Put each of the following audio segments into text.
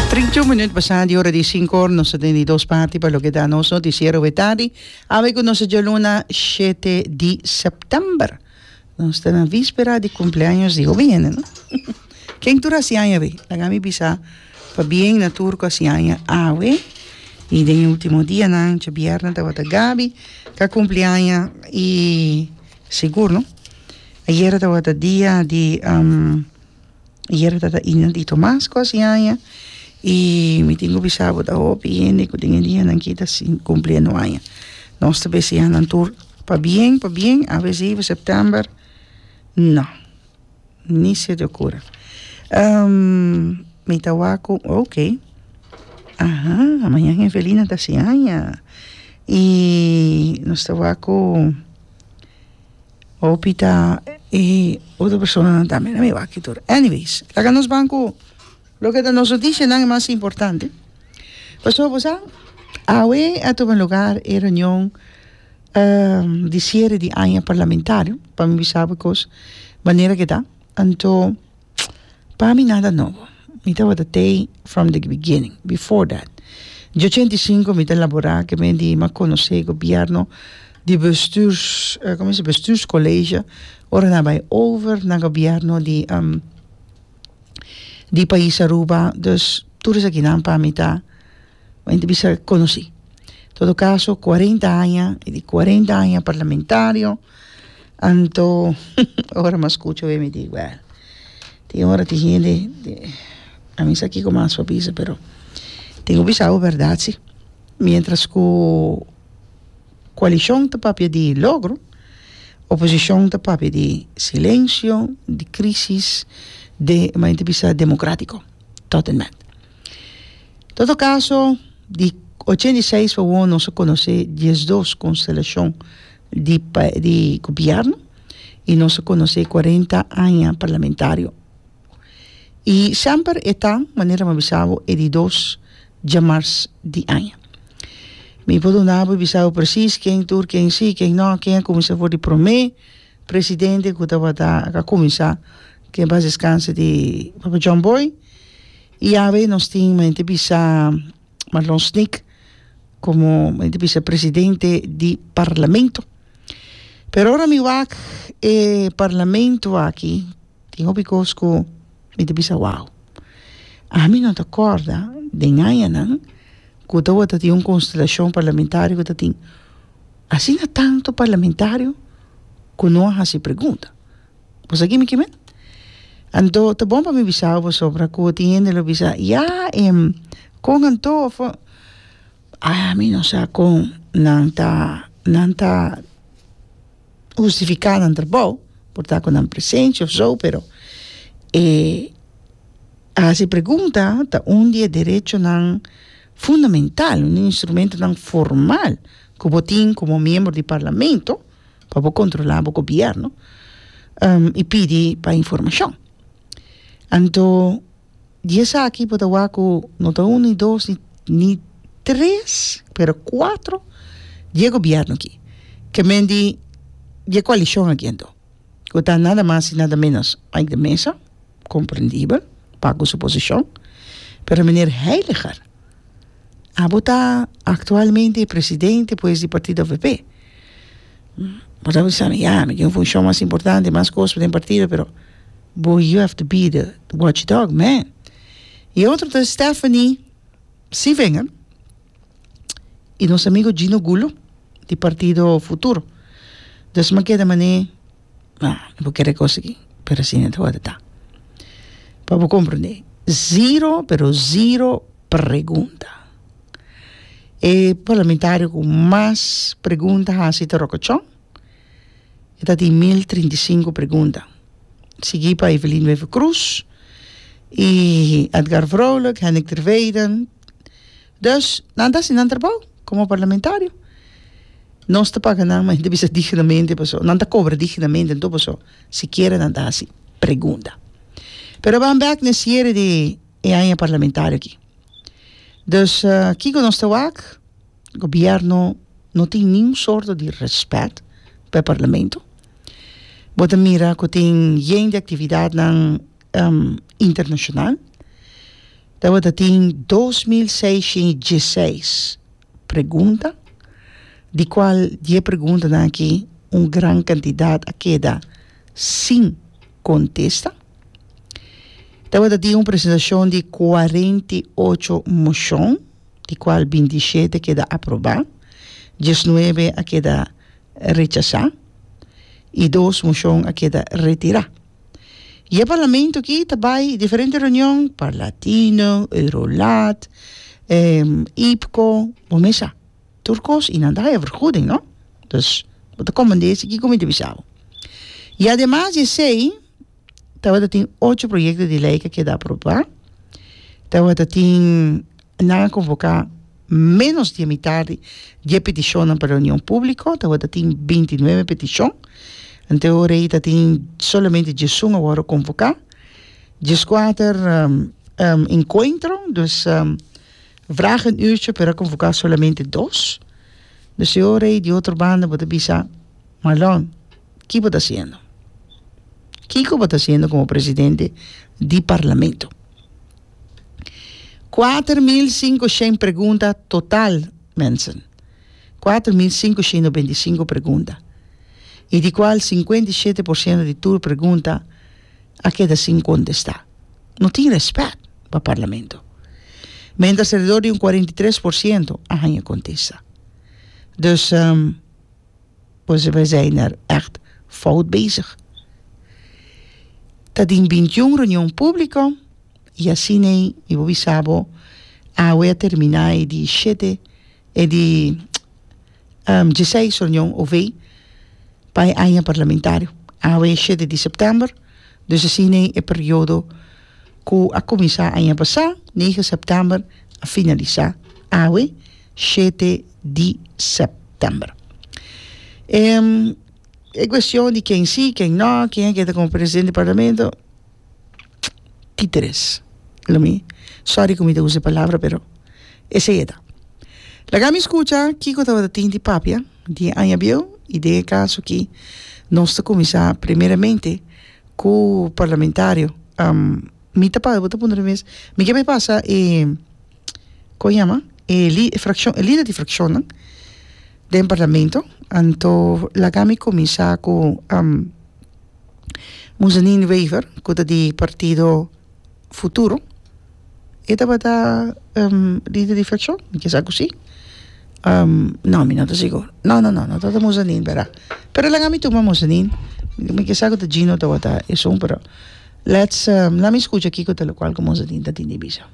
Trinta i un minüt basá di ora di sinkor, nos ta den di dos parti pa loke ta nos notisiero e tardi. Awe ku nos a djaluna shete di sèptèmber. Nos ta na víspera di kumpleaños di hopi hende, no? Ken tur a hasi aña awe? Laga mi bisa pabien na tur ku a hasi aña awe. I den e último dianan, djabièrnè tabata Gaby ka kumpli aña i sigur, no? Ayera tabata dia di. y yera ta ta iñandito mas cos yaña y mi tin cu bisa bo ta hopi hende cu den e dianan ki ta sin cumpli e no aña nos ta deseanan tur pa bien pa bien a ver si september no ni se te ocura mi ta wak cu okay aha mañan evelina ta siñaña y nos ta wak cu Hopi ta y otro personanan tambe no awor aki tur anyways laga nos ban cu loke ta nos noticianan mas importante pasobra bo sa awe a tuma lugar e reunion di cierre di aña parlamentario pa mi bisa bo cos manera ke ta anto. Pa mi nada nobo. Mi tabata tei from the beginning. Before that. Di ochenta i sinku mi ta labora ke men di ma konosé gobièrnu di besturs komo se besturs kolege ora nan a bai over na gobièrnu di di pais Aruba. Dus tur esakinan pa mi ta Mente bisa konosí. Todo kaso kuarenta aña i di kuarenta aña parlamentario, anto ora mas kucha oe mi di wèl. Tin ora tin hende a mi sa kiko mas pa bisa pero tin ku bisa bo bèrdat si miéntras ku koalishon ta papia di logro oposishon ta papia di silensio, di krísis, de bai ta bisa demokratiko tòt en mèt. Todo caso, di ochenta i seis pa wor nos a conoce diesdos constelacion di di gobierno y nos a conoce cuarenta aña parlamentario. Y semper e ta, manera mi a bisa bo, e di dos dje mars di aña. Mi por duna bo y bisa bo precies ken tur, ken si, ken no, ken a cuminsa for di prome, Presidente ku tabata a ka kuminsá ku e bas descanse di Papa John Boy i awe nos tin men ta bisa Marlon Snick komo men ta bisa presidente di Parlamento pero ora mi wak e Parlamento aki tin hopi kos ku mi ta bisa wow ami no ta kòrda den añanan ku tabata tin un konstelashon parlamentario ku ta tin Asina tantu parlamentario ku no a hasi pregunta. Boso a gimi ki men? Anto ta bon pa mi bisau boso pasobra ku tin hende lo bisa, ya, em, kon anto? Of, a mi no sa kon nan ta, nan ta hustifiká nan trabou, por ta ku nan presenshi of so, pero e hasi pregunta ta un di e derechonan fundamental, un di e instrumentonan formal. ku bo tin komo miembro di parlamento pa bo kontrolá bo gobièrnu i pidi pa informashon. Anto di esaki bo ta wak ku no ta un ni dos ni ni tres pero kuatro di e gobièrnu aki ke men di di e koalishon aki anto ku ta nada mas i nada ménos Mike de Mesa, Komprendibel pa ku su posishon, pero miner Heiliger, abo ta aktualmente e presidente pues di partido AVP. Bo ta bisa mi, ya, mi tin un funshon mas importante, mas kos den partido, pero bo you have to be the watch dog man. E otro ta Stephanie Sivegem i nos amigo Gino Gulo di partido Futuro. Dus m'a keda manera bo kere kos aki pero asi no ta wòrdu ta pa bo komprondé zero pero zero pregunta e parlamentario ku mas pregunta hasi ta rokochon e ta tin mil trinta i sinku pregunta sigi pa evelin wever cruz y edgar vrolijk, hendrik derweyden Dus, nan ta hasi nan trabou como parlamentario. Nos ta paga nan, ma hen ta bisa dignamente pasobra nan ta cobra dignamente anto paso sikiera nan ta hasi pregunta. Pero a ban bek na e siere di e aña parlamentario aki. Dus, kiko nos ta wak? Gobierno no tin niun sorto di respet pa e parlamento. Bo ta mira cu tin yen di actividadnan. internashonal tabata tin dos mil seishent i dieseis pregunta di kual di e preguntanan aki un gran kantidat a keda sin kontesta tabata tin un presentashon di kuarenta i ocho moshon di kual binti i shete a keda aprobá dies nuebe a keda rechasá i dos moshon a keda retirá. I e parlamento aki ta bai diferente reunion, Parlatino, Eurolat, em, IPCO, bo mesa. Tur kos, i nan ta haya vergoeding, no? Dus, bo ta komende esei kiko mi ta bisa bo. I ademas di esei, tabata tin ocho proyekto di lei ku a keda aprobá, tabata tin, nan a konvoká. Ménos di e mitar di dje petishonnan pa reunion públiko, ta worda tin binti nuebe petishon. Antehoraí ta tin solamente djesun a wòrdu konvoká. Djeskwater enkuentro, dus vraag een uurtje, pero a konvoká solamente dos. Dus e ora ei di otro banda bo ta bisa, Marlon, ki bo ta hasiendo? Kiko bo ta hasiendo komo presidente di Parlamento? Kuater mil sinku shen pregunta total, mensen. Kuater mil sinku sheno beinti sinku pregunta. I di kual sinkuenta i shete por sheno di tur pregunta a keda sin kontestá. No tin rèspèt pa parlamento. Mientras alredor di un kuarenta i tres por shento a haña kontesta. Dus, pues we zijn er ècht fout bezig. Ta den bintiún reunion públiko. y asin'ei mi bo bisa bo awe a termina e di shete e di diseis reunion ovei pa e aña parlamentario awe shete di september dus asin'ei e periodo ku a kuminsá aña pasá nege september a finalisá awe shete di september e kuestion di ken si ken no ken a keda komo presidente di parlamento. titeres lo mi sorry ku mi ta usa e palabra pero esei e ta laga mi skucha kiko tabata tin di papia di e aña bieu i den e kaso aki nos ta kuminsá primeramente ku parlamentario mi ta pasa bo ta puntra mi mes mi ke bai pasa e kon yama e li e fraccion e lider di fraccionnan den parlamento anto laga mi kuminsá ku. Muzanin Wever cu ta di partido Futuro e tabata lider di fraccion kisa cu si no mi no ta sigur no no no no tabata Muzanin wera pero laga mi tuma Muzanin mi kisa cu ta Gino tabata esun pero lets lami scucha kico ta locual cu Muzanin ta tin di bisa.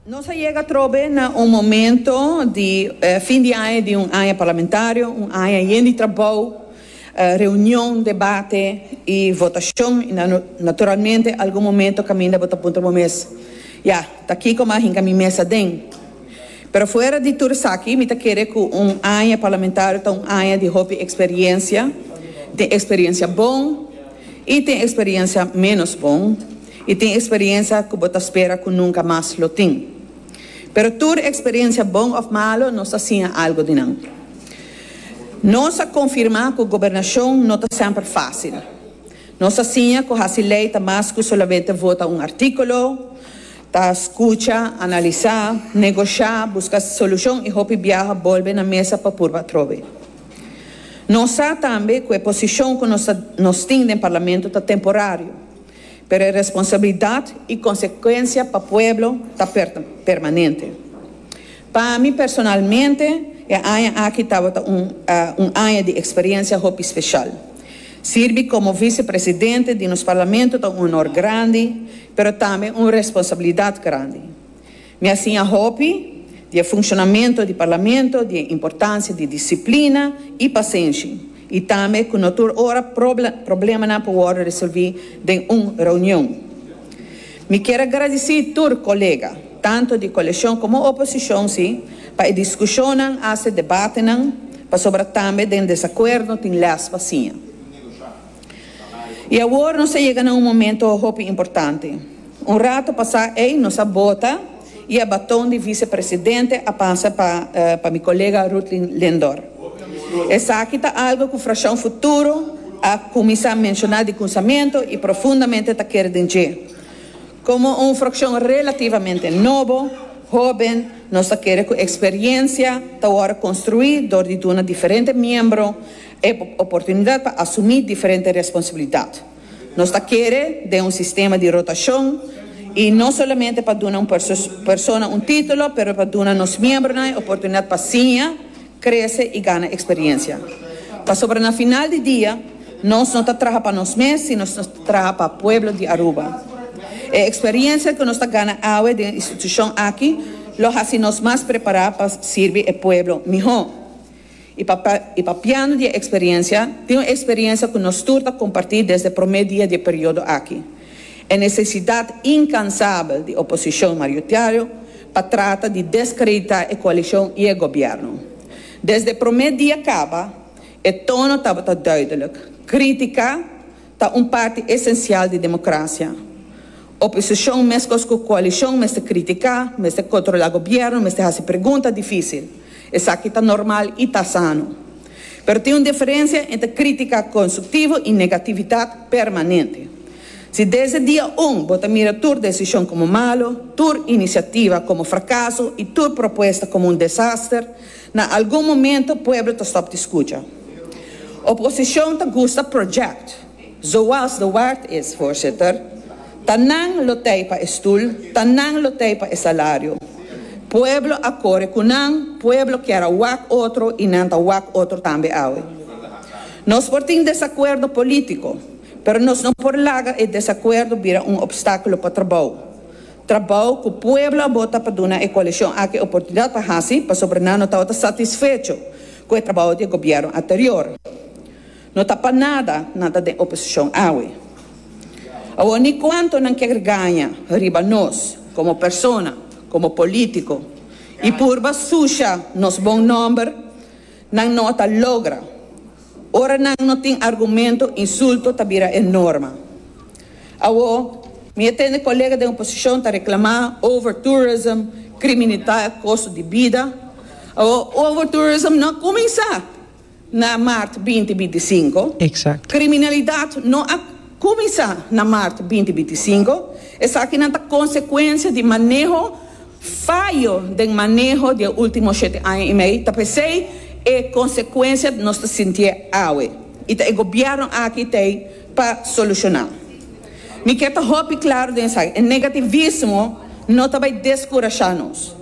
Nos a yega trobe na un momento di fin di aña di un aña parlamentario, un aña yen di trabou, reunion, debate y votacion y naturalmente algun momento caminda bo ta puntra bo mes, Ya, ta kico mas hinca mi mes aden? Pero fuera di tur esaki mi ta kere cu un aña parlamentario ta un aña di hopi experiencia, tin experiencia bon y tin experiencia menos bon. I tin eksperiencia ku bo ta spera ku nunka mas lo tin. Pero tur eksperiencia bon òf malu nos ta siña algu di nan. Nos a konfirmá ku gobernashon no ta semper fásil. Nos a siña ku hasi lei ta mas ku solamente vota un artíkulo, ta skucha, analisá, negoshá, buska solushon i hopi biaha bolbe na mesa pa purba atrobe. Nos sa tambe ku e posishon ku nos tin den parlamento ta temporario. Pero e responsabilidat i konsekuensia pa pueblo ta permanente. Pa mi personalmente e aña aki tabata un aña di eksperiensia hopi speshal. Sirbi komo visepresidente di nos parlamento ta un honor grandi, pero tambe un responsabilidat grandi. Mi a siña hopi di e funshonamento di Parlamento, di e importansia di disiplina i pasenshi, i tambe ku no tur ora problemanan por wòrdu resolví den un reunion. Mi kier a gradisí tur kolega, tantu di koleshon komo oposishon si, pa e diskushonnan, hasta e debatenan, pasobra tambe den desakuerdo tin lès pa siña. I awor nos a yega na un momento hopi importante. Un rato pasá ei nos a bota i e baton di visepresidente a pasa pa mi kolega Ruthlin Lindor. Esaki ta algo ku Frashon Futuro a kuminsá menshoná di kunsamentu i profundamente ta kere den dje. Komo un frakshon relativamente nobo, hóben, nos ta kere ku eksperiensia ta wòrdu konstruí dor di duna diferente miembro, E oportunidat pa asumí diferente responsabilidat. Nos ta kere den un sistema di rotashon i no solamente pa duna un persona un título pero pa duna nos miembronan e oportunidat pa siña, krese i gana eksperiensia. Pasobra na final di dia nos no ta traha pa nos mes sino nos ta traha pa pueblo di Aruba. E eksperiensia ku nos ta gana awe den e institushon aki lo hasi nos mas prepará pa sirbi e pueblo mihó. I pa i papiando di e experiencia, tin un experiencia cu nos tur ta comparti desde prome dia di e periodo aki, e necesidad incansabel di oposicion mariotyario pa trata di descredita e coalicion y e gobierno. Desde e prome dia caba, e tono tabata duidelijk, critica, Ta un parti esencial di democracia. Oposicion mescos cu coalicion mester critica, mester controla gobierno, mester haci pregunta dificil. Esaki ta normal y ta sano. Pero tin un diferencia entre critica constructivo y negatividad permanente. Si desde dia un bo ta mira tur decision como malo, tur iniciativa como fracaso y tur propuesta como un desaster, Na algun momento pueblo ta stop di scucha. Oposicion ta gusta project, zoals de waard is, Voorzitter. Ta nan lo tei pa e stoel, ta nan lo tei pa e salario. Pueblo a core cu nan, pueblo kier a wak otro y nan ta wak otro tambe awe. Nos por tin desacuerdo politico, pero nos no por laga e desacuerdo bira un obstaculo pa trabao. Trabao cu pueblo a bota pa duna e coalicion aki oportunidad pa haci, pasobra nan no tabata satisfecho cu e trabao di e gobierno anterior. No ta pa nada nan ta den oposicion awe. Awor ni cuanto nan kier gaña riba nos como persona, como politico y purba sucia nos bon nomber, nan no a ta logra. Ora nan no tin argumento, insulto ta bira e norma. Awo, mi a tende colega den oposicion ta reclama over tourism, criminita, costo di bida. Awo, over tourism no a cuminsa na maart binti binti sinku. Criminalidad no a cuminsa na maart binti binti sinku. Esakinan ta consecuencia di maneho Fayo den maneho di e ultimo shete aña i mei ta p'esei e konsekuensia nos ta sintié awe i ta e gobièrnu aki ta ei pa solushoná. Mi ke ta hopi klaru den esaki, e negativismo no ta bai deskurashá nos.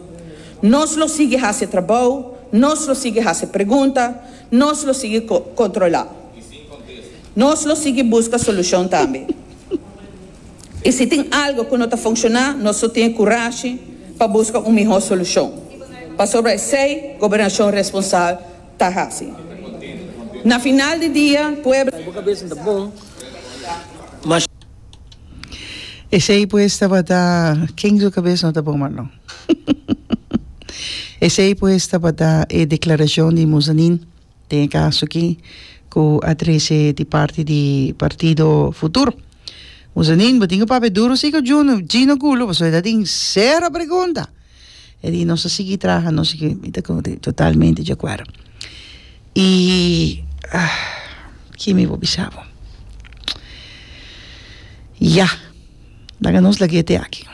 Nos lo sigui hasi e trabou, nos lo sigui hasi e pregunta, nos lo sigui kontrolá. Nos lo sigui buska solushon tambe. I si tin algu ku no ta funshoná, nos su tin e kurashi pa buska un mihó solushon, pasobra esei gobernashon responsabel ta hasi. Na final di dia, pueblo. Esei pues tabata ken su kabes no ta bon mas no? Esei pues tabata e deklarashon di Muzanin. Den e kaso aki ku a trese di parti di Partido Futuro. Musa Nin, bo tin ku papia duru si ku Juno, Gino Gulo, pasobra e ta tin sero pregunta. E di nos a sigui traha, nos sigui, mi ta totalmente di akuerdo. I ki mi por bisa bo? Ya, laga nos lagu'e te aki.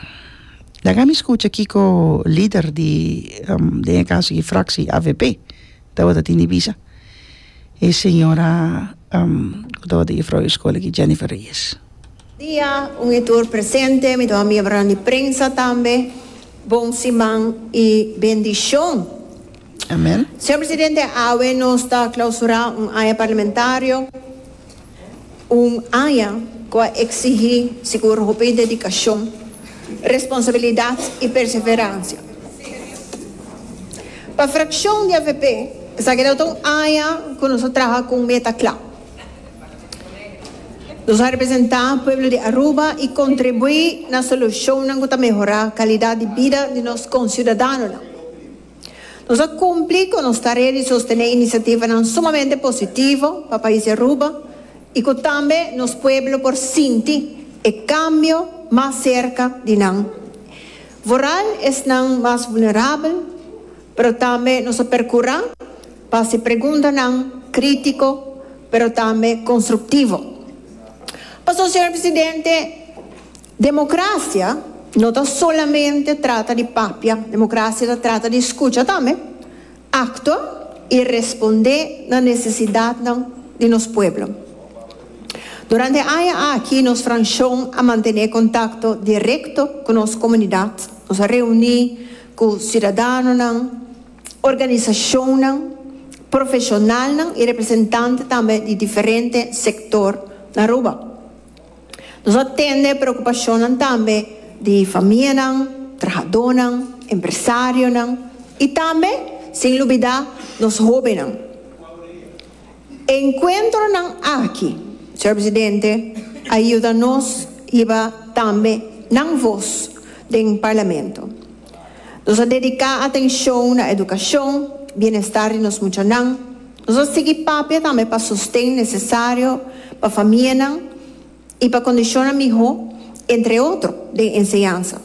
Laga mi skucha kiko lider di, den e kaso aki, fraksi avp. tabata tin di bisa e señora ku tabata jufrou di eskol aki Jennifer Reyes. Dia un e tur presente mi tabata miebranan di prensa tambe bon siman i bendishon. Amen. Señor Presidente, awe nos ta klausurá un aña parlamentario. Un aña cu a exigi sigur hopi dedicacion, responsabilidad y perseverancia. Pa fraccion di avp esaki ta un aña cu nos a traha cu un meta cla. Nos a representa pueblo di Aruba y contribui na solucionnan cu ta mehora calidad di bida di nos conciudadanonan. Nos a cumpli cu nos tarea di sostene iniciativanan sumamente positivo pa pais Aruba y cu tambe nos pueblo por sinti e cambio mas cerca di nan. Vooral esnan mas vulnerabel, pero tambe nos a percura pa haci preguntanan critico pero tambe constructivo. Paso, Señor Presidente, Democracia no ta solamente trata di papia, democracia ta trata di scucha tambe, actua y responde na necesidadnan di nos pueblo. Durante e aña aki nos francion a mantene contacto directo cu nos comunidad, nos a reuni cu ciudadanonan, organisacionnan, profesionalnan y representante tambe di diferente sector na Aruba. Nos a tende e preokupashonnan tambe di famianan, trahadónan, empresarionan i tambe, sin lubidá, nos hóbennan. E enkuentronan aki, señor presidente, a yuda nos hiba tambe nan vos den Parlamento. Nos a dediká atenshon na edukashon, bienestar di nos muchanan, Nos a sigui papia tambe pa sosten nesesario pa famianan i pa kondishonnan mihó, entre otro, den enseñansa.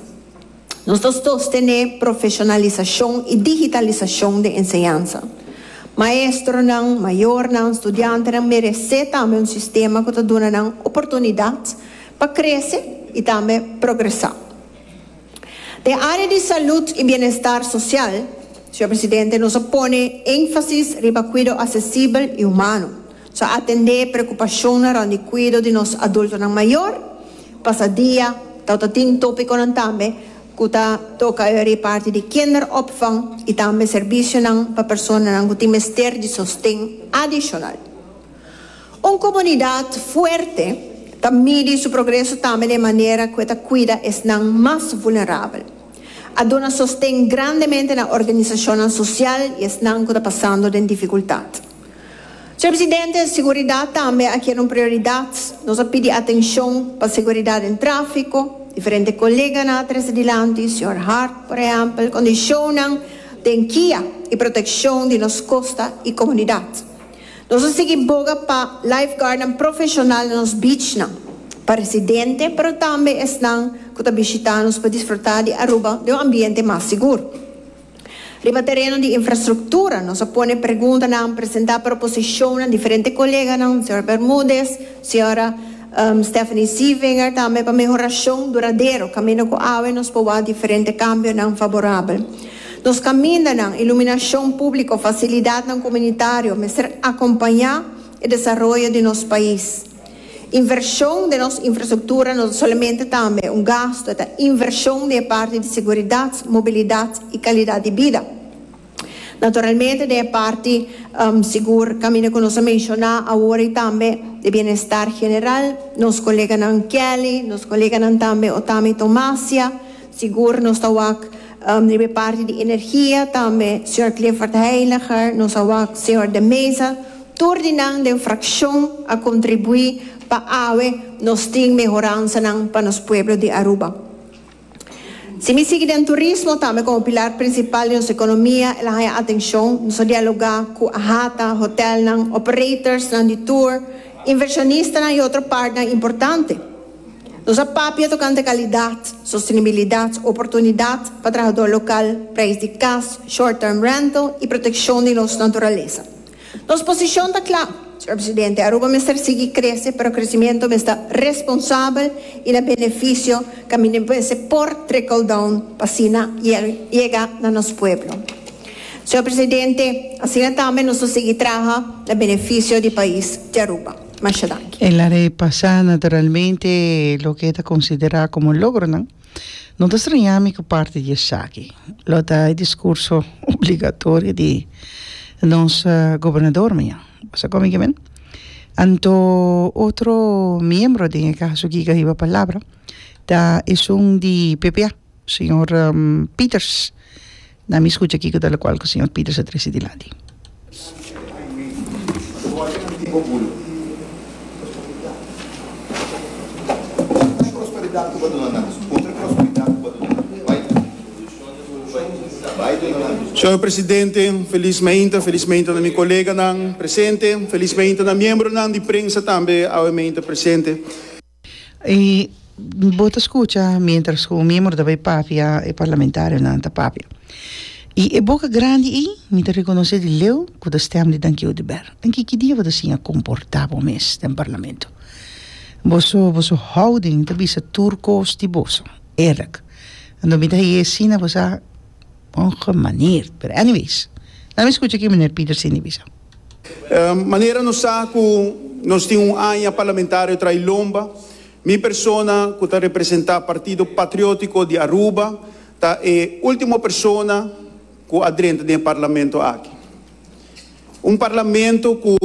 Nos ta sostené profeshonalisashon i digitalisashon den enseñansa. Maestronan, mayornan, studiantenan meresé tambe un sistema ku ta duna nan oportunidat pa krese i tambe progresá. Den área di salud i bienestar sosial, Señor Presidente, nos a pone énfasis riba kuido asesibel i humano. Nos a atendé preokupashonnan rònt di kuido di nos adultonan mayor. Pasadia ta ta tin tópikonan tambe ku ta toka e ri parti di kinderopvang i tambe serbisionan pa personanan ku tin mester di sosten adishonal. Un komunidat fuerte ta midi su progreso tambe den manera ku e ta kuida esnan mas vulnerabel. A duna sosten grandemente na organisashonnan sosial i esnan ku ta pasando den difikultat. Señor Presidente, seguridat tambe a keda un prioridat. Nos a pidi atenshon pa seguridat den tráfiko. Diferente koleganan a trese dilanti, señor Hart por ehèmpel, kondishonnan den kia i protekshon di nos kosta i komunidat. Nos a sigui boga pa lifeguardnan profeshonal na nos beachnan, pa residente pero tambe esnan ku ta bishitá nos pa disfrutá di Aruba den un ambiente mas sigur. Riba tereno di infrastruktura nos a pone preguntanan, presentá proposishon na diferente koleganan, señora Bermudez, señora Stephanie Zeevinger tambe pa mehorashon duradero kaminda ku awe nos por wak diferente kambionan faborabel. Nos kamindanan, iluminashon públiko, fasilidatnan komunitario mester akompañá e desaroyo di nos pais. Invershon den nos infrastruktura no ta solamente tambe un gastu, e ta invershon den e parti di seguridat, mobilidat i kalidat di bida. Naturalmente den e parti sigur kaminda ku nos a menshoná awor i tambe di bienestar general, nos koleganan Kelly, nos koleganan tambe Otami Tomasia, sigur nos ta wak. Riba e parti di energia tambe señor Clifford Heiliger, nos a wak señor De Meza, tur di nan den frakshon a kontribuí pa awe nos tin mehoransanan pa nos pueblo di Aruba. Si mi sigui den turismo tambe komo pilar prinsipal di nos ekonomia el a haña atenshon, nos a dialogá ku AHATA, hotelnan, operators nan di tur, invershonistanan i otro partnan importante. Nos a papia tokante kalidat, sostenibilidat, oportunidat pa trahador lokal, preis di kas, short term rental i protekshon di nos naturalesa. Nos posishon ta kla, Señor Presidente, Aruba mester sigui krese pero kresimentu mes ta responsabel i na benefisio kaminda mi mester por trickle down pa asina yega na nos pueblo. Señor Presidente, asina tambe nos ta sigui traha na benefisio di pais di Aruba. Masha danki. El a repasá naturalmente loke e ta konsiderá komo logronan. No ta strañá mi ku parti di esaki lo ta e diskurso obligatorio di nos gobernador mañan. Pasa kominke men. Anto otro miembro den e kaso Giga hiba palabra ta esun di PPA. Señor Pieters. Na mi scucha kico ta locual cu Señor Pieters a trece dilanti. Señor Presidente, Feliz Mainta, Feliz Mainta na mi coleganan presente, Feliz Mainta na miembronan di prensa tambe awe Mainta presente. Y bo ta scucha mientras cu un miembro ta bay papia e parlamentarionan ta papia. Y e boca grandi ey mi ta reconoce di leu cu ta stem di Dan Kieudeberg. Den ki ki dia bo ta siña comporta bo mes den parlamento? Boso boso houding ta bisa tur cos di boso, eerlijk. Anto mi ta haye asina bo sa ongemanierd. Pero anyways, lami scucha ki meneer Pieter Sinibiza. Manera nos sa cu nos tin un aña parlamentario traai lomba, mi persona cu ta representa Partido Patriotico di Aruba ta e ultimo persona cu a drenta den e parlamento aki. Un parlamento cu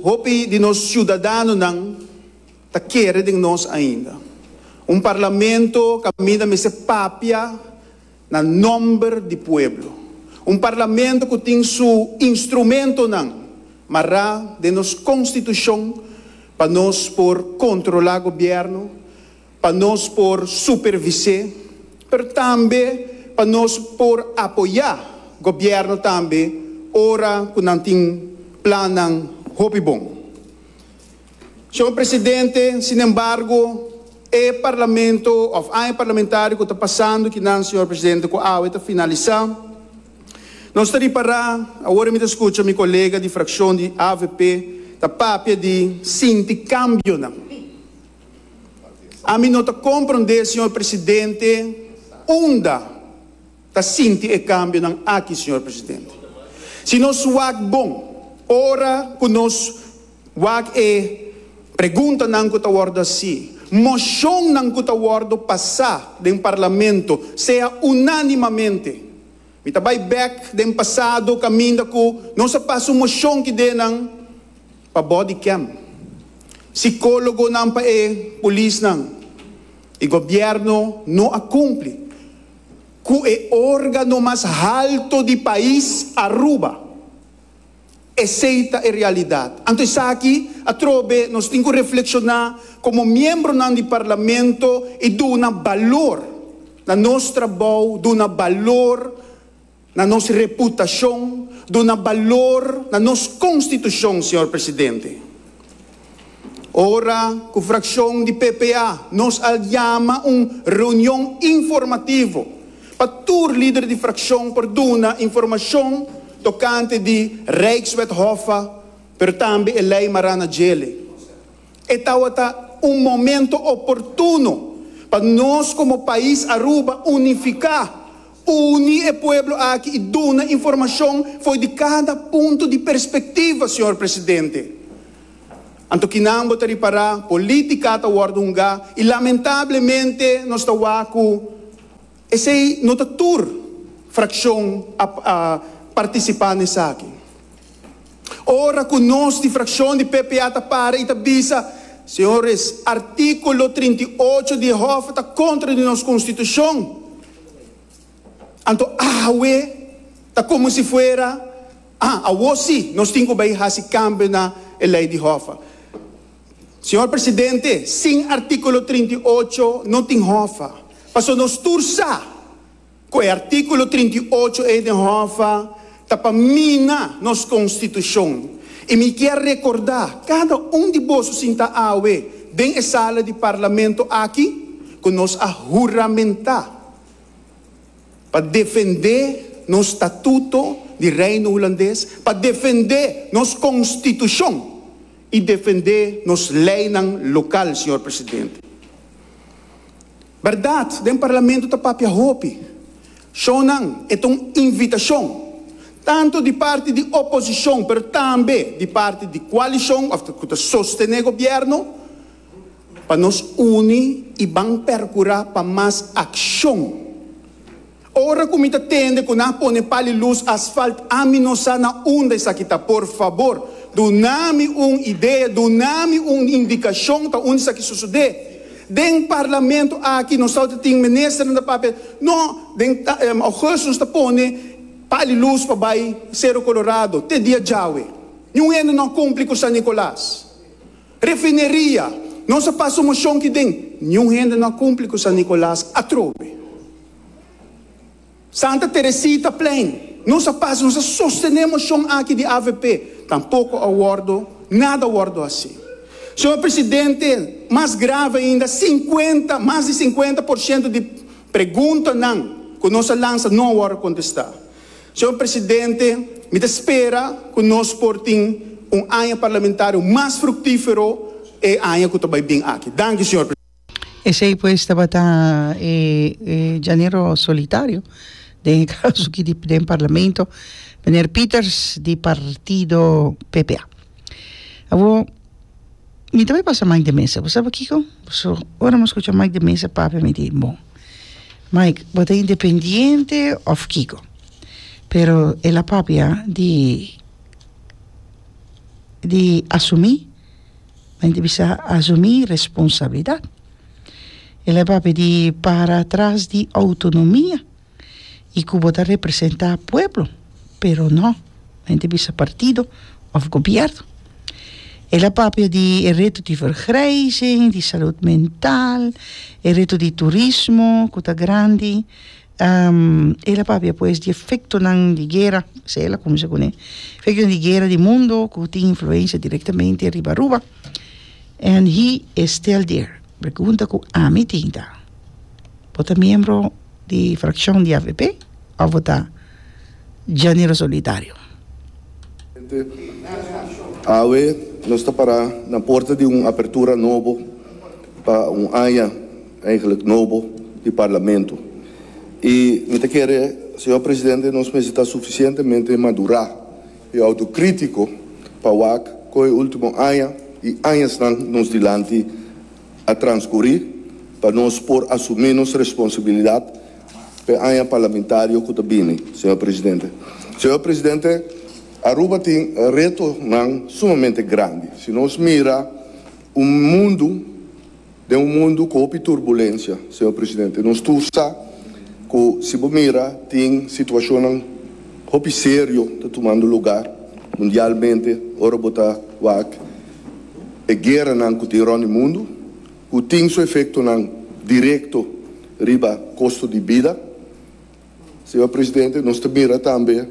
hopi di nos ciudadanonan ta kere den nos ainda. Un parlamento caminda mester papia Na nòmber di pueblo. Un parlamento ku tin su instrumentonan mará den nos konstitushon pa nos por kontrolá gobièrnu, pa nos por supervis'é, pero tambe pa nos por apoyá gobièrnu tambe ora ku nan tin plannan hopi bon. Señor Presidente, sin embargo, e Parlamento of aña parlamentario cu ta pasando kinan, Señor Presidente, cu awe ta finalisa, nos ta ripara, awor mi ta scucha mi colega di fraccion di avp ta papia di sinti cambionan. Ami no ta comprende, Señor Presidente, unda ta sinti e cambionan aki, Señor Presidente. Si nos wak bon ora cu nos. Wak e preguntanan ku ta wòrdu hasi. Moshonnan ku ta wòrdu pasá den parlamento sea unánimamente. Mi ta bai bèk den pasado kaminda ku nos a pasa un moshon kidenan pa body cam, sikólogonan pa e polisnan i gobièrnu no a kumpli ku e órgano mas haltu di pais Aruba, Esei ta e realidat. Anto esaki atrobe nos tin ku reflekshoná komo miembronan di Parlamento i duna balor na nos trabou, duna balor na nos reputashon, duna balor na nos Konstitushon, señor presidente. Ora cu fraccion di PPA nos al jama un reunion informativo pa tur lider di fraccion por duna informacion tocante di Rijkswet Hoffa pero tambe e Ley Marana Jele. E tawata un momento oportuno pa nos como pais Aruba unifica Uni e pueblo aki y duna informacion fo'i di cada punto di perspectiva, Señor Presidente. Anto kinan bo ta ripara, politica ta worde hunga y lamentablemente nos ta wak cu esey no ta tur fraccion a participa n'esaki. Ora cu nos di fraccion di PPA ta para y ta bisa, Señores, articulo trinta i ocho di e hof ta contra di nos Constitucion, Anto awe ta komo si fuera, a, awo si nos tin ku bai hasi kambio na e lei di hòfa. Señor Presidente, sin artíkulo trinta i ocho no tin hòfa. Pasobra nos tur sa ku e artíkulo trinta i ocho ei den hòfa, Ta pa mina nos konstitushon. I mi kier rekordá kada un di boso sintá awe den e sala di parlamento aki ku nos a huramentá pa defendé nos statuto di Reino Hulandes, pa defendé nos konstitushon i defendé nos leinan lokal, señor presidente. Berdad, den Parlamento ta papia hopi shownan. E ta un invitashon tantu di parti di oposishon pero tambe di parti di koalishon òf ku ta sostené gobièrnu pa nos uni i ban perkurá pa mas akshon. Ora ku mi ta tende ku nan a pone pal i lus asfalt, ami no sa na unda esaki ta. Por fabor, duna mi un idea, duna mi un indikashon ta unda esaki sosodé. Den Parlamento aki nos tabata tin Minister nan ta papia, no, den August nos ta pone pal i lus pa bai Sero Kolorado. Te dia djawe, niun hende no a kumpli ku San Nikolas. Refineria, Nos a pasa un moshon ki den niun hende no a kumpli ku San Nikolas atrobe. Santa Teresitaplein, Nos a pasa, nos a sostené e moshon aki di avp, tampoko a wòrdu, nada wòrdu hasi. Señor Presidente, mas grave ainda, sinkuenta, mas di sinkuenta por shento di preguntanan ku nos a lansa no a wòrdu kontestá. Señor Presidente, mi ta spera cu nos por tin un aña parlamentario mas fructifero e aña cu ta bay bin aki. Danki, Señor Presidente. Esey pues tabata e llanero solitario den e caso aki di den Parlamento, meneer Pieters di partido PPA. Awor. Mi ta bai pasa Mike de mesa bo saba kiko paso ora mi skucha Mike de mesa papia mi di bon Mike bo ta independiente of kiko pero el a papia di di asumi mi ta bisa asumi responsabilidad el a papia di para atras di autonomia y cu bo ta representa pueblo pero no men ta bisa partido of gobierno el a papia di e reto di vergrijzing di salud mental e reto di turismo cu ta grandi el a papia pues di efectonan di guera esey el a cuminsa cune efectonan di guera di mundo cu tin influencia directamente riba aruba and he is still there pregunta cu ami tin ta. Bo ta miembro di frakshon di avp òf bo ta djanero solitario? Awe nos ta pará na porta di un apertura nobo pa un aña eigenlik nobo di Parlamento i mi ta kere, señor Presidente, nos mester ta suficientemente madurá i autokritiko pa wak kon e último aña i añasnan nos dilanti a transkurí pa nos por asumí nos responsibilidat p'e aña parlamentario ku ta bini, señor presidente. Señor presidente, Aruba tin retonan sumamente grandi. Si nos mira un mundu, den un mundu ku hopi turbulensia, señor presidente, nos tur sa ku si bo mira tin situashonnan hopi serio ta tumando lugá mundialmente ora bo ta wak, e gueranan ku tin rònt di mundu, ku tin su efektonan direkto riba kosto di bida. Señor Presidente, nos ta mira tambe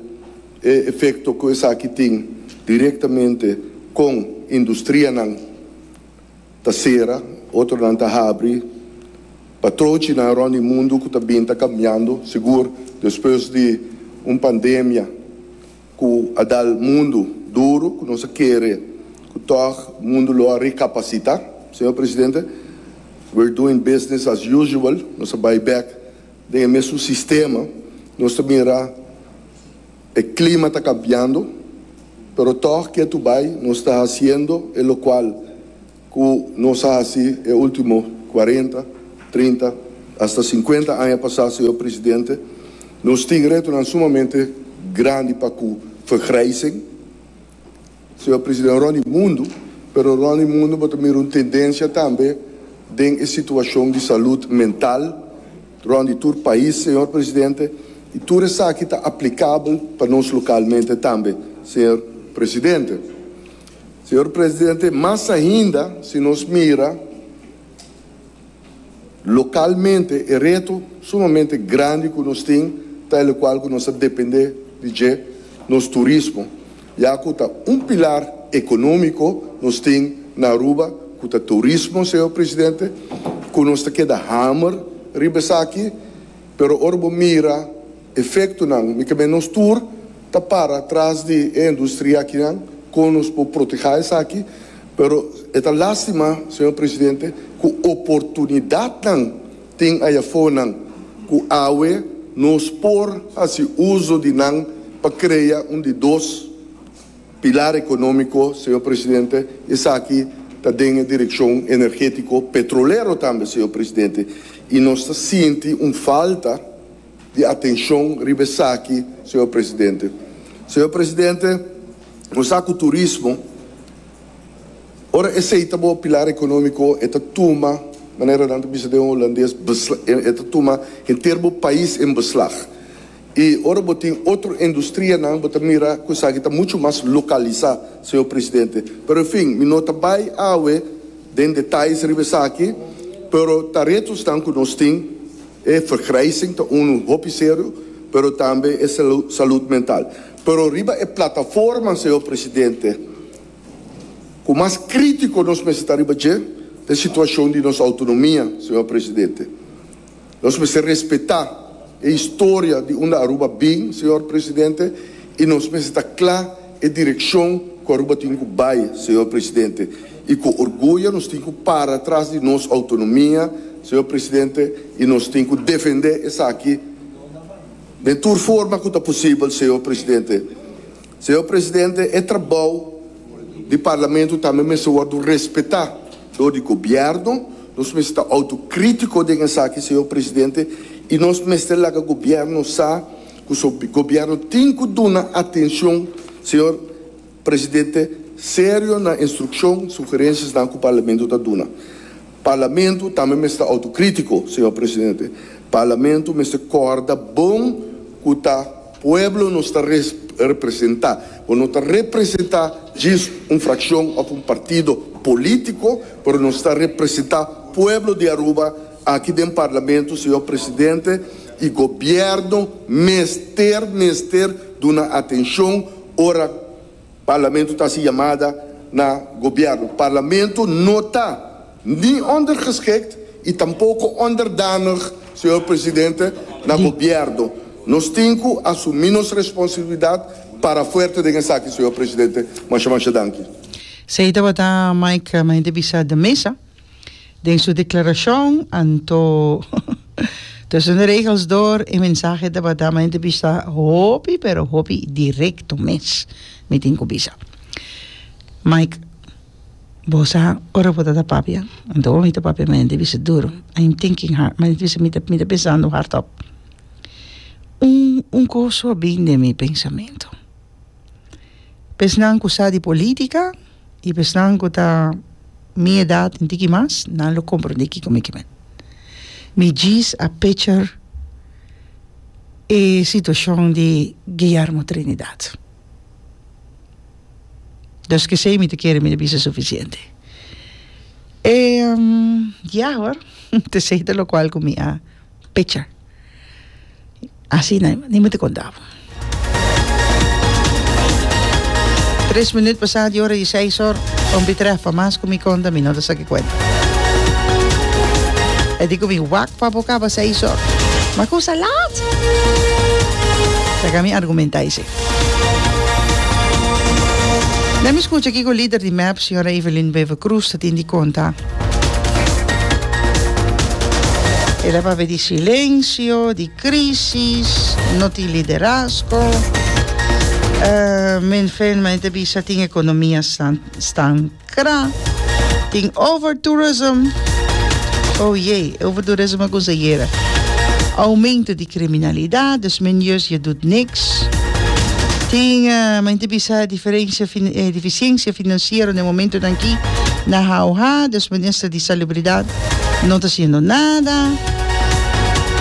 e efekto ku esaki tin direktamente kon industrianan ta sera, otronan ta habri, pa trochinan rònt di mundu ku ta bin ta kambiando, sigur despues di un pandemia. cu a dal mundo duro cu nos a kere cu tog mundo lo a recapacita, Señor Presidente, we're doing business as usual, nos a bay bek den e mesun sistema, nos ta mira e clima ta cambiando, pero tog ketu bay nos ta haciendo e locual Cu nos a haci e ultimo cuarenta, trinta, hasta cincuenta aña pasa señor Presidente, nos tin retonan sumamente grandi pa cu vergrijzing, señor Presidente, rond mundo, pero rond mundo bo ta mira un tendencia tambe den e situacion di salud mental rond tur pais señor Presidente, y tur esaki ta aplicabel pa nos localmente tambe señor Presidente. Señor Presidente, mas ainda si nos mira localmente e reto sumamente grandi cu nos tin ta el cual cu nos ta depende di dje, nos turismo, ya cu ta un pilar economico nos tin na Aruba cu ta turismo, Señor Presidente, cu nos ta keda hamer riba esaki, pero ora bo mira. Efectonan mikame nos tur ta para atras di e industria akinan, con nos por proteha esaki, pero e ta lastima Señor Presidente cu oportunidadnan tin ayafonan cu awe nos por haci uzo di nan pa crea un di dos pilar economico Señor Presidente, esaki ta den e direccion energetico petrolero tambe Señor Presidente y nos ta sinti un falta di atencion riba esaki, Señor Presidente. Señor Presidente, nos sa cu turismo, ora esey ta bo pilar economico, e ta tuma, manera nan ta bisa den Holandes, besla-, e ta tuma henter bo pais en beslag. Y ora bo tin otro industrianan, bo ta mira cu esaki ta mucho mas localisa, Señor Presidente. Pero, en fin, mi no ta bay awe den detalles riba esaki, pero ta retosnan cu nos tin. E vergrijzing ta un hopi serio, pero tambe e salud mental. Pero riba e plataforma, Señor Presidente, cu mas critico nos mester ta riba dje ta e situacion di nos autonomia, Señor Presidente. Nos mester respeta e historia di unda Aruba bin, Señor Presidente, y nos mester ta cla, E direkshon ku Aruba tin ku bai, señor presidente, i ku orguyo nos tin ku para tras di nos outonomia, señor presidente, i nos tin ku defendé esaki den tur forma ku ta posibel, señor presidente. Señor presidente, e trabou di Parlamento tambe mester wòrdu respetá dor di Gobièrnu. Nos mester ta outokritiko den esaki, señor presidente, i nos mester laga Gobièrnu sa Cu sopi Gobierno tin cu duna atencion, Señor Presidente, serio na instruccion, sugerenciasnan cu Parlamento ta duna. Parlamento tambe mester autocritico, Señor Presidente. Parlamento mester corda bon cu ta pueblo nos ta representa, bo no ta representa djis un fraccion of un partido politico, pero nos ta representa pueblo di Aruba, Aki den Parlamento, señor Presidente, e Gobierno mester mester duna atencion ora Parlamento ta haci yamada na Gobierno. Parlamento no ta ni ondergeschikt y tampoco onderdanig, señor Presidente, na Gobierno. Nos tin cu asumi nos responsabilidad para fuerte den esaki, señor Presidente. Masha masha danki. Esei tabata Mike Mahendebisa de Meza. Den su declaracion anto Tussen Regels door e mensahe tabata manen ta bisa hopi pero hopi directo mes mi tin cu bisa Mike bo sa ora bo tata papia anto ora mi ta papia manen ta bisa duro I am thinking hard manen ta bisa mi ta pensando hardop un un coso a bin den mi pensamento pesnan cu sa di politica. Y pues nan cu ta mi edad y tiki mas nan lo comprende kico mi kimen. Mi djis a pecher e situacion di Guillermo Trinidad. Dus ki esey mi ta kere mi ta bisa suficiente. E ya hoor, esey ta locual cu mi a pecher. Asina ni mester contabo. Tres minuut pasá di ora di seis hor, un bitref pa mas cu mi conta mi no ta sa ki cuenta. E di cu mi wak pa bo caba seis hor. Ma cosa laat! Taka mi argumenta esey. Lemme scucha kico lider di mep, Sra. Evelyn Wever Croes, ta tin di conta. El a papia di silencio, di crisis, no tin liderazgo. Min Venema, e ta bisa tin economia stan. Kra tin overtourism, oh jee, e overtourism a konsegera aumento di kriminalidat, dus men jus ja dut niks. Tin mente bisa diferensia defisiensia finansiero den momentonan aki na hou ha, dus minister di salubridat no ta hasiendo nada.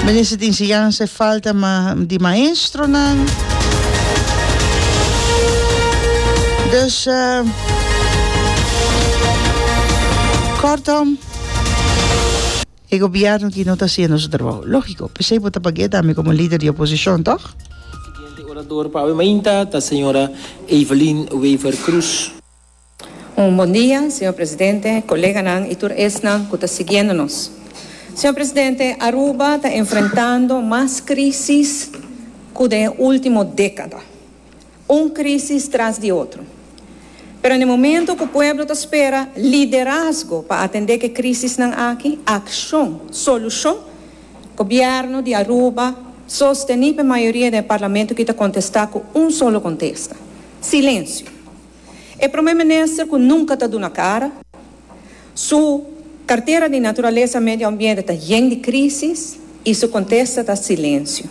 Minister di enseñansa e falta di maestronan. Dus. Kortom, e gobièrnu ki no ta hasiendo su trabou. Lógiko, p'esei bo ta pag'é tambe komo lider di oposishon, tòg? E siguiente orador pa awe mainta ta señora Evelyn Wever Croes. Un bon dia, señor presidente, koleganan i tur esnan ku ta siguiendo nos. Señor presidente, Aruba ta enfrentando mas krísis ku den e último dékada. Un crisis tras di otro. Pero n'e momento cu pueblo ta spera liderazgo pa atende cu e crisisnan aki, accion, solucion, Gobierno di Aruba, sosteni pa e mayoria den e Parlamento aki ta contesta cu un solo contesta, silencio. E Prome Minister cu nunca ta duna cara. Su Cartera di Naturalesa y Medio Ambiente ta yen di crisis y su contesta ta silencio.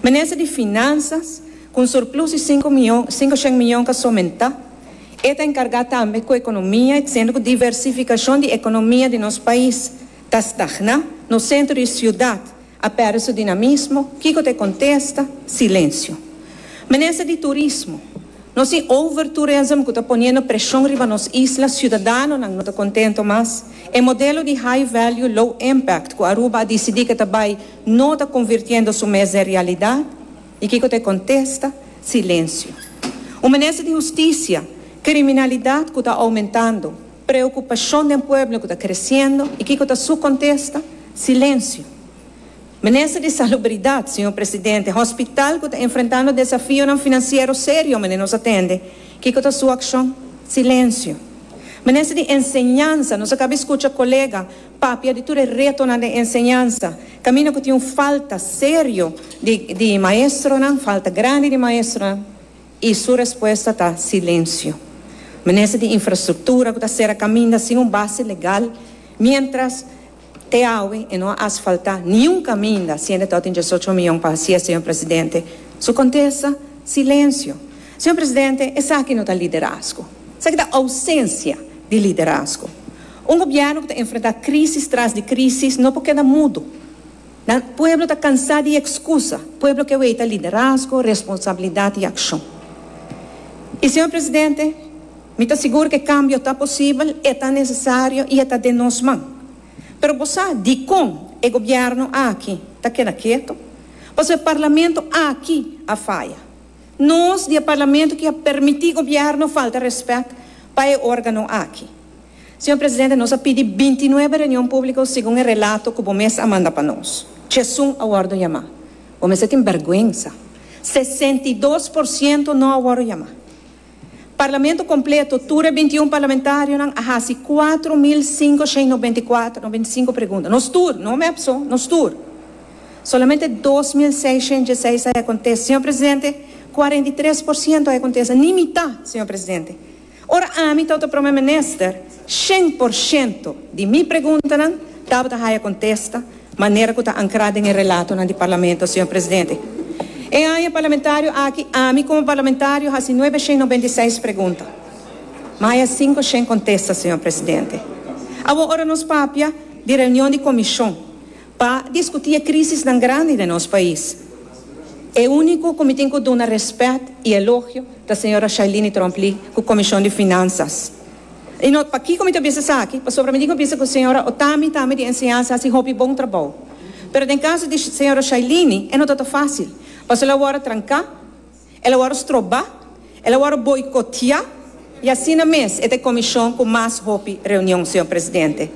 Minister di Finanzas, cu un surplus di cinco miyon, cincocientos miyon ca somenta, e ta encarga tambe cu economia y siendo cu diversificacion di economia di nos pais ta stagna no centro di ciudad, A perde su dinamismo. Kiko ta e contesta? Silencio. Minister di Turismo, Nos tin over tourism cu ta poniendo presion riba nos isla, ciudadanonan no ta contento mas. E modelo di high value, low impact cu Aruba a dicidi ke ta bay no ta convirtiendo su mes den realidad. Y kiko ta e contesta? Silencio. Un Minister di Husticia, Criminalidad cu ta aumentando. Preokupashon den pueblo ku ta kresiendo i kiko ta su kontesta? Silensio. Minister di Salubridat, Señor Presidente, hospital ku ta enfrentando desafionan finansiero serio mende nos a tende, kiko ta su akshon? Silensio. Minister di Enseñansa, nos a kabe skucha kolega papia di tur e retonan den enseñansa, kaminda ku tin un falta serio di maestronan, falta grandi di maestronan. I su respuesta ta silensio. Menester di infrastruktura ku ta sera kaminda sin un base legal miéntras te awe e no a asfaltá niun kaminda siendo e ta tin diesocho mion pa hasié, señor presidente. Su kontesta, silensio. Señor presidente, esaki no ta liderazgo. Esaki ta ousensia di liderazgo. Un gobièrnu ku ta enfrentá krísis tras di krísis no por keda mudu. Nan pueblo ta cansá di excusa. Pueblo ke wei ta liderazgo, responsabilidad y accion. Y Señor Presidente, mi ta sigur ke cambio ta posibel, e ta necesario y e ta den nos man. Pero bo sa dicon e Gobierno aki ta keda keto? Pasobra e Parlamento aki a faya. Nos di e Parlamento ke a permiti Gobierno falta respect pa e organo aki. Señor Presidente, nos a pidi binti nuebe reunion publico segun e relato cu bo mes a manda pa nos. Chesun a wordo yama. Bo mester tin berguensa. Sesenta i dos por ciento no a wordo yama. Parlamento completo, tur e binti un parlamentarionan a haci cuatro mil cinco shei nobenta i cuatro, nobenta i cinco pregunta. Nos tur, no mep so, nos tur. Solamente dos mil seishent diesseis a e a contesta. Señor Presidente, cuarenta i tres por ciento a e a contesta. Ni mita, Señor Presidente. Ora ami tabata Prome Minister, shen por shento di mi preguntanan tabata haya contesta manera cu ta ancra den e relatonan di Parlamento, Señor Presidente. E aña parlamentario aki ami como parlamentario haci nuebe shen nobenta i seis pregunta. M'a haya cinco shen contesta, Señor Presidente. Awor ora nos papia di reunion di Comision, Pa diskutí e krísisnan grandi den nos pais, e úniko ku mi tin ku duna rèspèt i elogio ta señora Shailini Trompli ku Komishon di Finansas. I no pa kiko mi ta bisa esaki, pasobra mi tin ku bisa ku señora Otami tambe di Enseñansa hasi hopi bon trabou. Pero den kaso di señora Shailini e no ta ta fásil, pasobra el awor a tranká. El a wòrdu strobá, el a wòrdu boikoteá i asina mes e ta e komishon ku mas hopi reunion, señor presidente.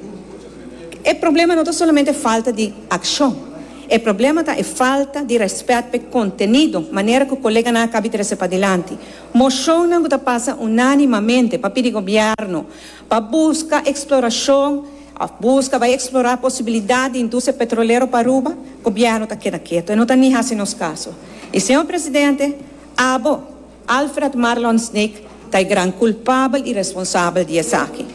E problema no ta solamente e falta di akshon, e problema ta e falta di rèspèt p'e kontenido, manera ku koleganan a kabi trese padilanti moshonnan ku ta pasa unánimamente pa pidi gobièrnu Pa buska eksplorashon òf buska bai eksplorá posibilidat di industria petrolero pa Aruba, gobièrnu ta keda ketu, e no ta ni hasi nos kaso. I señor presidente, abo, Alfred Marlon Snick, ta e gran kulpabel i responsabel di esaki.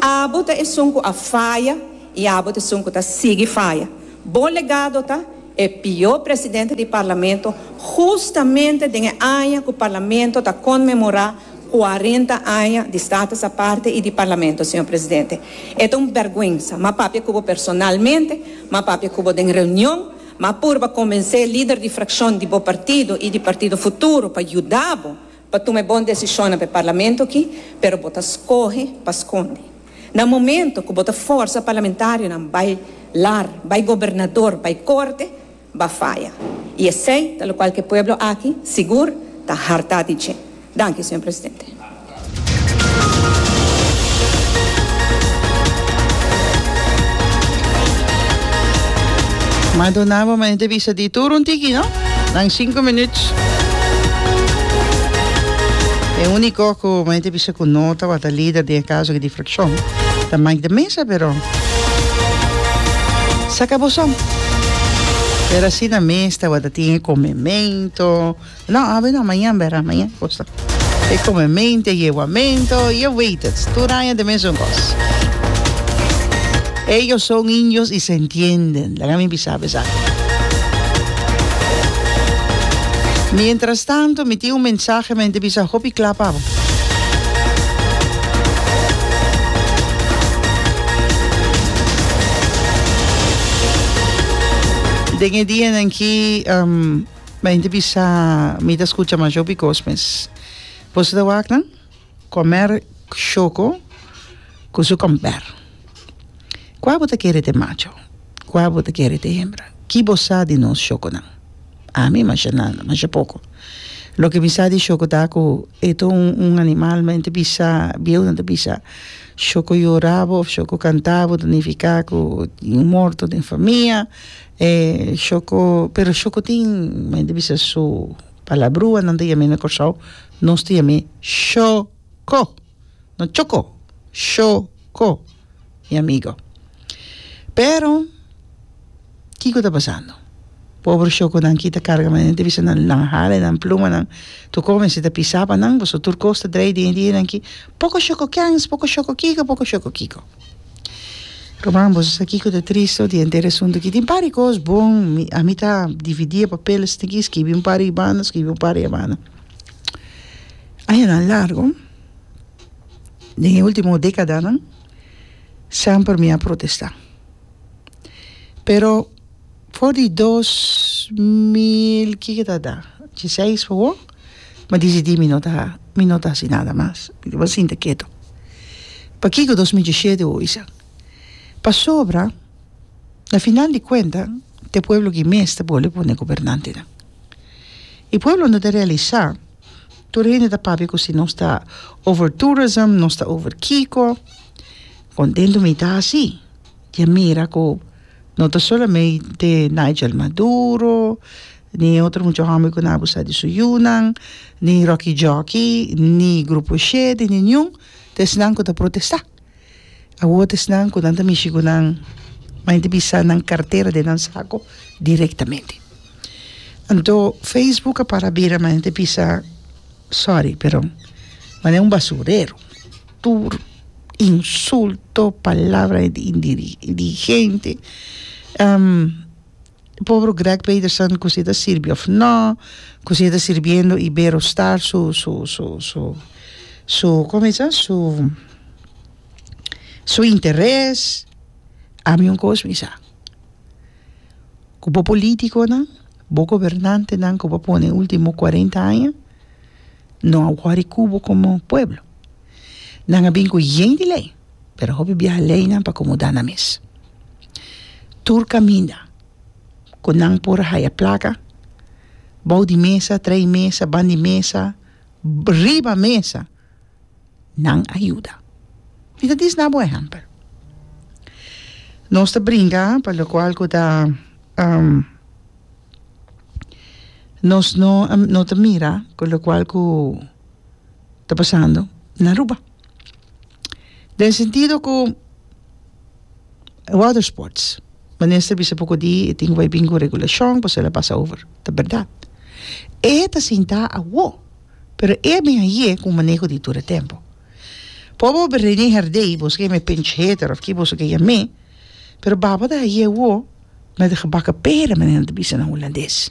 Abo ta esun ku a faya i abo ta esun ku ta sigui faya. Bo legado ta e pió presidente di Parlamento hustamente den e aña ku Parlamento ta konmemorá Cuarenta aña di Status Aparte y di Parlamento, Señor Presidente. E ta un berguensa. M'a papia cu bo personalmente, m'a papia cu bo den reunion, m'a purba convence e lider di fraccion di bo partido y di Partido Futuro pa yuda bo pa tuma e bon decisionnan pa e Parlamento aki, pero bo ta scoge pa sconde. Na momento cu bo ta forsa parlamentarionan bay lar, bay gobernador, bay Corte, Ba faya. Y esey ta locual ke pueblo aki sigur ta harta di dje. Danki, Señor Presidente. Maduna bo manera di bisa di tur un tiki no? Nan cinco minuts. E unico cu manera di bisa cu no tabata lider den e caso aki di. Shon, ta Mike de Meza pero saka bo son pero asina mes tawata tin e comemento no awe no mañan bera mañan cosa e comemento e yewamento je weet het tur aña de mes un cos ellos son indios y se entienden. Laga mi bisa bo esaki. Mientras tanto mi tin un mensahe men ta bisa hopi kla pa bo. Den e dianan ki men ta bisa mi ta skucha masha hopi kos mes. Boso ta wak nan? Comer choco cu su comper. Cua bo ta kere te macho? Cua bo ta kere te hembra? Ki bo sa di nos choconan? Ami masha nada, masha poco. Loke mi sa di choco ta cu e ta un animal ma e ta bisa, bieunan ta bisa, choco yorabo of choco cantabo ta nifica cu tin morto den famia, e choco, pero choco tin, men ta bisa su palabruanan ta yam'e na Corsou Nos tin yam'é Choco. No Choco, Choco, mi amigo. Pero, kico ta pasando? Pober Choconan kita carga manera ta bisa nan, nan hara e nan plumanan. Tur cor mester ta pisa pa nan, pasobra tur cos ta draai deen di e nanki. Poco Choco kens, poco Choco kico, poco Choco kico. Ruman, boso sa kico ta triste di henter e asuntu aki? Tin par di cos bon, mi, ami ta dividi e papeles esaki, skibi un par ribanda, skibi un par riabanda. Añanan largu, den e ultimo decadanan, semper mi a protesta. Pero for di dos mil kico ta da, dieciseis pa wor, mi a dicidi mi no ta, mi no ta haci nada mas, mi lo a sinta keto. Pakico dos mil diecisiete wor bisa? Pasobra, na final di cuenta, ta e pueblo ki mes ta bolbe pone gobernantenan. E pueblonan ta realisa, tur hende ta papia cu si nos ta over tourism, nos ta over kico, contento mi ta haci. Ya mira cu no ta solamente Nigel Maduro, ni e otro mucha homber cu nan a busa di su yunan, ni Rocky Jockey, ni Grupo Shady, ni niun ta esnan cu ta protesta. Awor ta esnan ku nan ta mishi ku nan ma nan ta bisa nan kartera den nan sako direktamente. Anto facebook a para bira ma nan ta bisa sòri pero nan e un basurero tur insulto, palabra di indirigente. Por Greg Peterson cu si e ta sirbi of no, cu si e ta sirbiendo Ibero Star su su su su su como mi bisa su su interes ami un cos mi bisa cu bo politiconan bo gobernantenan cu bo a pone ultimo cuarenta aña No a wòri ku bo komo pueblo. Nan a bin ku yei di lei, pero hopi biaha leinan pa komodá nan mes. Tur kaminda ku nan por a haya plaka bou di mesa, trei mesa, ban di mesa, riba mesa, nan a yuda. Mi ta disna bo ehèmpel. Nos ta bringa pa lokual ku ta nos no no ta mira cu locual cu ta pasando na Aruba. Den sentido cu water sports minister a bisa poco di e tin cu bai bin cu regulacion pasobra el a pasa over ta berdad. E ta sinta awo pero e a bin aye cu un maneho di tur e tempo. Por bo Bereni Herdey boso ki yam'e Pinch hitter of ki boso ki yam'e Pero baba ta haye wo, na di gebaken pera, manera nan ta bisa na hulandes.